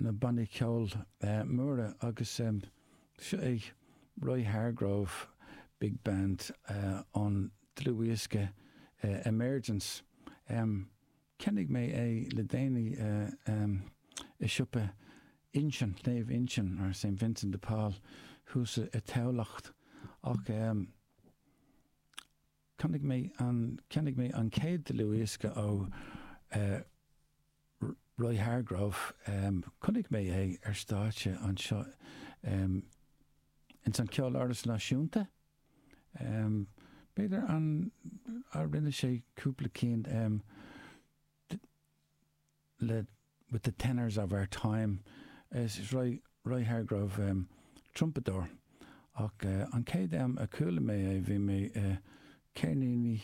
na bannaí ceoil móra agus seo é Roy Hargrove Big Band ón dlúthdhiosca Emergence. Cheannaigh mé é le déanaí i siopa Uinsionn, Naomh Uinsionn, mar Saint Vincent de Paul thuas i dTamhlacht ach Cheannaigh mé an, cheannaigh mé an chéad dlúthdhiosca ó eh Roy Hargrove, em chonaic mé é ar stáitse anseo em ins an Ceoláras Náisiúnta, em b'fhéidir an, a' rinne sé cúpla ceann em, le with the tenors of our time'. Is Roy Hargrove trumpadóir ach an chéad am a chuala mé é bhí mé i gceirníní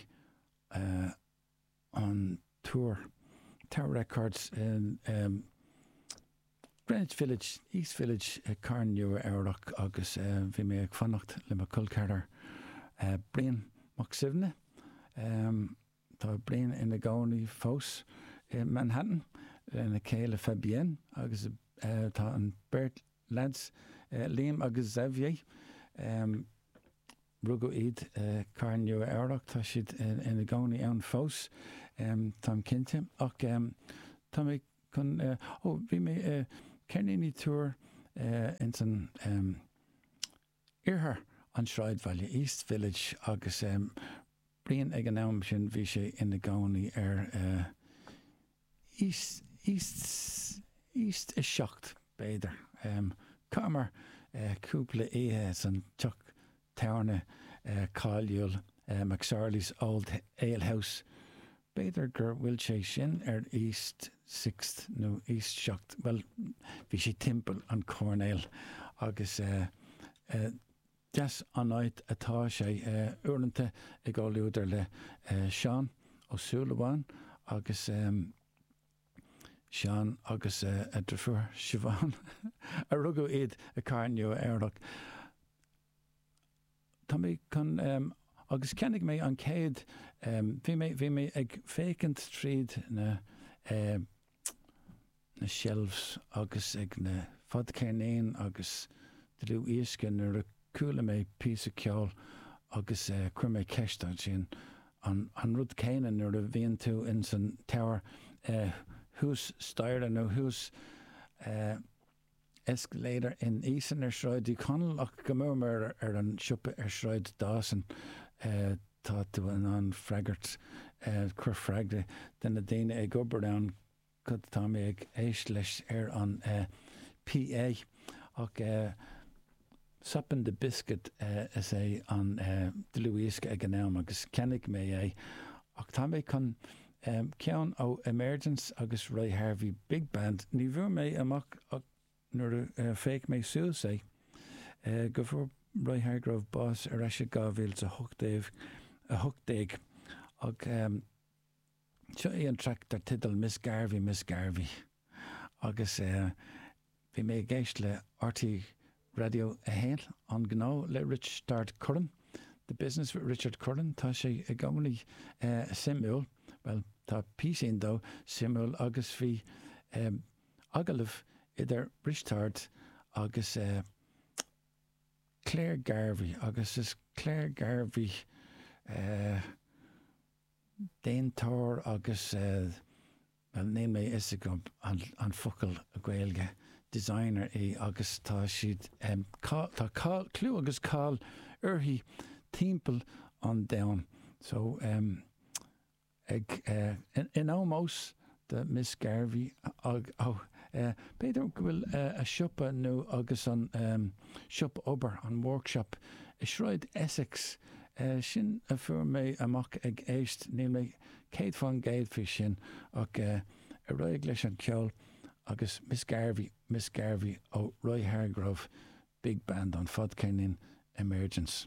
an Túir, Tower Records i Greenwich Village, East Village i gcathair Nua-Eabhrac agus bhí mé ag fanacht le mo cholceathrar Brian Mac Suibhne. Tá Brian ina gcónaí fós i Manhattan lena chéile Fabienne agus tá an beirt leaids, Liam agus Xavier, rugadh iad i gcathair Nua-Eabhrac, tá siad ina gcónaí ann fós, táim cinnte. Ach tá mé chun, ó, bhí mé i gceirníní Túir ins an, Iarthar an tSráidbhaile, East Village, agus eh Brian ag an am sin, bhí sé ina gcónaí ar eh East, East 7 b'fhéidir. Em chaitheamar eh cúpla oíche san teach tábhairne eh cáiliúil eh McSorley's Old Ale House, B'fhéidir gur bhfuil sé sin ar east, sixt nó east seacht, bhuel, bhí sé timpeall an choirnéil agus deas an áit atá sé. Uaireanta i gcomhluadar le Seán Ó Súilleabháin agus Seán agus a dheirfiúr Siobhán a rugadh iad i gcathair Nua-Eabhrac, tá mé chun agus cheannaigh mé an chéad bhí mé bhí mé ag féachaint tríd na na shelves agus ag na fadcheirníní agus dlúthdhioscaí nuair a chuala mé píosa ceoil agus chuir mé ceist ansin an an rud céanna nuair a bhíonn tú in san tower thuas staighre nó thuas escalator in Eason ar Shráid Uí Chonaill ach go mór mór ar an siopa ar Shráid Dawson tá tú in ann freagairt, cur freagra, de na daoine ag obair ann, cad atá mé ag éist leis ar an PA? Ach Soppin' the Biscuit is ea an dlúthdhiosca ag an am agus cheannaigh mé é, ach tá mé chun ceann ó Emergence agus Roy Hargrove Big Band, ní bhfuair mé amach ach nuair a féach mé suas é, go bhfuair Roy Hargrove bás ar ais i 2018, ach. Seo é an traic dar teideal Miss Garvey, Miss Garvey agus bhí mé ag éist le RTÉ Raidió 1, An Gnó le Risteárd Curran, The Business with Richard Curran, tá sé i gcónaí suimiúil, bhuel, tá píosín dó suimiúil agus bhí agallamh idir Risteárd agus Claire Garvey agus is Claire Garvey eh. déantóir agus níl a fhios agam an focal Gaeilge designer í agus tá siad cáil, tá cáil, clú agus cáil uirthi timpeall an domhain so ag in ómós do Miss Garvey ag, oh eh, b'fhéidir go bhfuil eh, a siopa nó agus an em, siopa obair, an workshop i Sráid Essex, eh, sin a fuair mé amach ag éist, níl mé céad fán gcéad faoi sin ach eh, ar aghaidh leis an cheol agus Miss Garvey, Miss Garvey, ó Roy Hargrove, big band, an fadcheirnín Emergence.